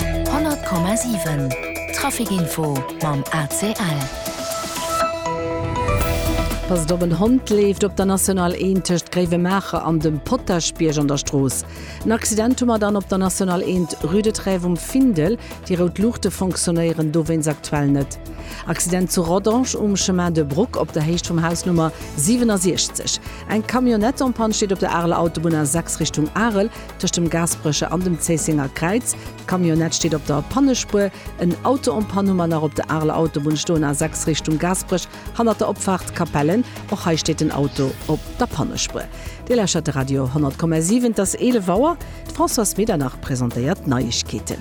100,7 Trafic Info mam ACL. Passt op, en Hond leeft op der National I tëscht Gréiwemaacher an dem Potaschbierg an der Strooss. En Accident hu mer dann op der National I, rue de Trèves um Findel. Déi rout Luuchte fonctionnéieren dowéinst aktuell net. Accident zu Rodange um Chemin de Bruck op der Héicht vum Haus Nummer 67. Eng Camionnette en panne steet op der Areler Autobunn A6 Richtung Arel. tëscht dem Gaasperecher an dem Zéissenger Kräiz. D'Camionnette steet op der Pannespuer. En Auto en Panne hu mer nach op der Areler Autobunn stoen, A6 Richtung Gaasperech, hannert der Opfaart Capellen. Och hei steet den Auto op der Pannespuer. Dir lauschtert de Radio 10,7. Et ass 11 Auer. D'Françoise Medernach presentéiert d'Neiegkeeten.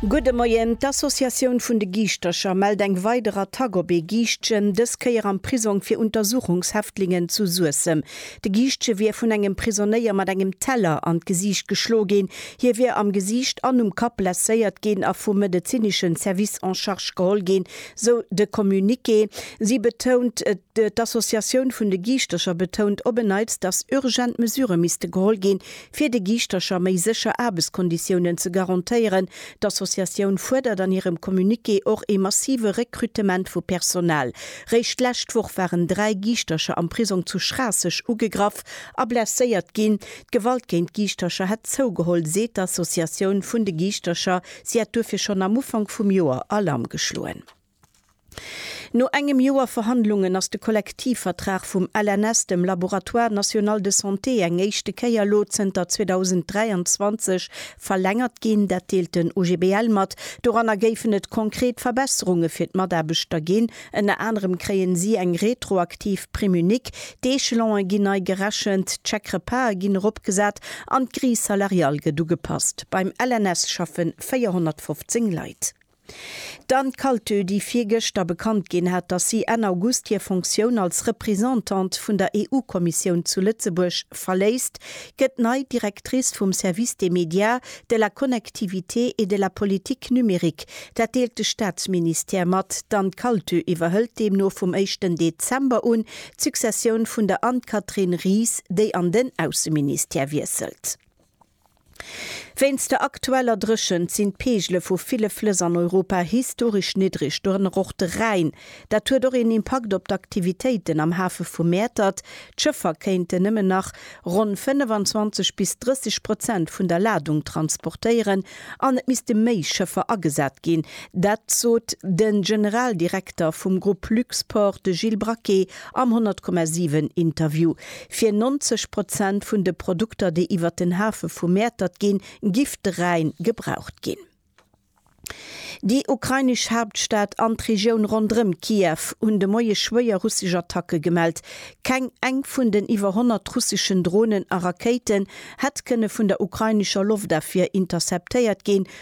Gudde Moien. D'Associatioun vun de Giischtercher mellt eng weider Attack op ee Giischtchen, dës Kéier am Prisong fir Untersuchungshäftlingen zu Suessem. De Giischtje wier vun engem Prisonéier mat engem Teller an d'Gesiicht geschlo ginn. Hie wier am Gesiicht an um Kapp blesséiert ginn a vum medezinesche Service en charge geholl ginn, sou de Communiqué. Si betount, D'Associatioun vun de Giischtercher betount op en Neits, datt urgent Mesurë misste geholl ginn, Fir de Giischtercher méi sécher Aarbechtskonditiounen ze garantéieren, D'Associatioun fuerdert an hirem Communiqué och ee massive Rekrutement vu Personal. Réischt d'lescht Woch waren dräi Giischtercher am Prisong zu Schraasseg ugegraff a blesséiert ginn. D'Gewalt géint Giischtercher hätt zougeholl, seet d'Associatioun vun de Giischtercher. Si hätt duerfir schonn am Ufank vum Joer Alarm geschloen. No engem Joer Verhandlungen ass de Kollektivvertrag vum LNS, dem Laboratoire National de Santé, eng éischte Kéier elo zënter 2023 verlängert ginn. Dat deelt den OGBL mat. Doranner géifen et konkret Verbesserunge fir d'Mataarbechter ginn. Ënner anerem kréien si eng retroaktiv Prime unique, d'Echelone ginn nei gerechent, d'Chèque-repasen ginn eropgesat an d'Grille salariale gëtt ugepasst. Beim LNS schaffe 415 Leit. D'Anne Kaltö, déi virgëschter bekannt ginn hat, datt si Enn August hir Fonctioun als Reprisantante vun der EU-Kommissioun zu Lëtzebuerg verléisst, gëtt nei Directrice vum Service des médias, de la connectivité et de la politique numérique. Dat deelt de Staatsministère mat. D'Anne Kaltö iwwerhëlt deemno vum éischten Dezember un d'Successioun vun der Anne-Catherine Ries, déi an den Ausseministère wiesselt. Wéinst der aktueller Dréchent sinn d'Peegele vu ville Flëss an Europa historesch niddreg, dorënner och de Rhäin. Dat huet och een Impakt op d'Aktivitéiten am Hafe vu Mäertert. D'Schëffer kéinten nëmmen nach ronn 25 bis 30 Prozent vun der Ladung transportéieren an et misste méi Schëffer agesat ginn. Dat sot de Generaldirekter vum Grupp Luxport, de Gilles Braquet, Am 100,7 Interview fir 90 Prozent vun de Produkter déi iwwert den Hafe vu Mäertert ginn, gifträin gebraucht ginn. Déi ukrainesch Haaptstad an d'Regioun ronderëm Kiew hunn de Moie schwéier russesch Attacke gemellt. Keng eng vun den iwwer 100 russeschen Dronen a Rakéiten hätt kënne vun der ukrainescher Loftafwier interceptéiert ginn,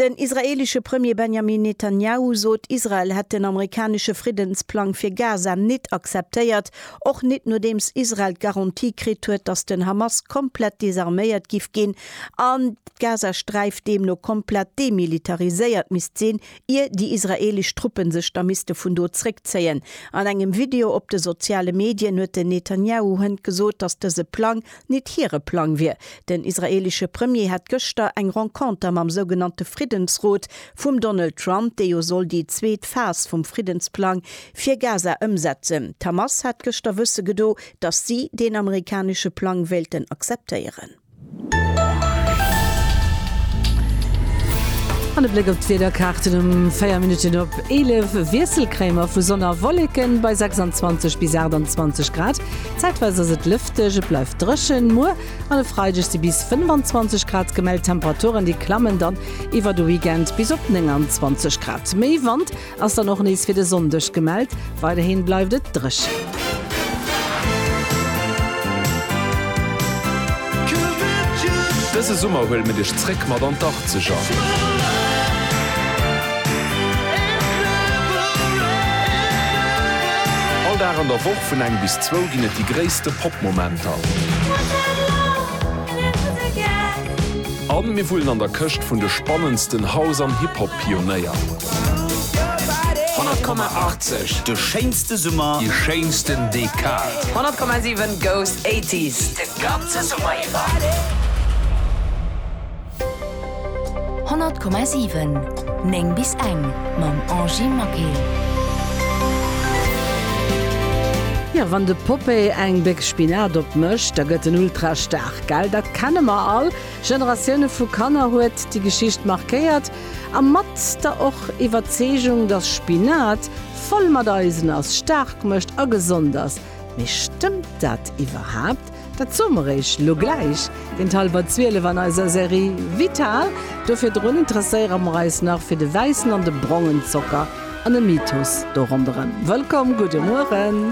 Den israeelesche Premier Benjamin Netanjahu sot, Israel hätt den amerikanesche Friddensplang fir Gaza nit akzeptéiert, och nit nodeems Israel d'Garantie kritt huet, datt den Hamas komplett desarméiert giff ginn an d'Gazasträif deemno komplett demilitariséiert misst sinn, ier déi israeelesch Truppe sech da misste vun do zréckzéien. An engem Video op de soziale Medien huet den Netanjahu hënt gesot, datt dëse Plang Nit hire Plang wier. Den israeelesche Premier hätt gëschter eng Renconter mam sougenannte Friddensrot vum Donald Trump, dee jo soll déi zweet Phas vum Friddensplang fir Gaza ëmsetzen. D'Hamas hat gëschter wësse gedo, datt si deen amerikanesche Plang wéilten akzeptéieren. An e Bléck op d'Wiederkaarten, Um 4 Minutten op 11 Wiesselcréimer vu Sonn a Wolleken bei 26 bis 28 Grad. Zäitweis ass et lëfteg, et bleift dréchen. Muer an e Freideg si bis 25 Grad gemellt, Temperaturen déi klammen dann iwwer de Weekend bis op 29 Grad. Méi Wand ass dann och nees fir de Sonndeg gemellt, weiderhi bleift et dréchen. Dëse Summer huele mir dech zréck mat an d'Achtzeger! All Dag an der Woch vun eng bis zwou ginn et déi gréisste Pop-Momenter. A mir wullen an der Këscht vun de spannendsten House an Hip-Hop-Pionéier. 100,80, de schéinste Summer, déi schéinsten Dekad. 100,7 goes 80s, de ganze Summer iwwer. 100,7 9 bis eng mam Angie Maquet. Jo, wann de Poppé eng Béck Spinat op mécht, da gëtt en ultra staark, gell? Dat kenne mer all. Generatioune vu Kanner huet déi Geschicht markéiert a mat der och Iwwerzeegung, dass Spinat voll mat Eisen ass, staark mécht a gesond ass. Mee stëmmt dat iwwerhaapt? Dat soe mer Iech lo gläich géint hallwer 12 an eiser Serie Vital. Do virdrun interesséiere mer eis nach fir de wäissen an de brongen Zocker an e Mythos do ronderëm. Wëllkomm, gudde Mueren.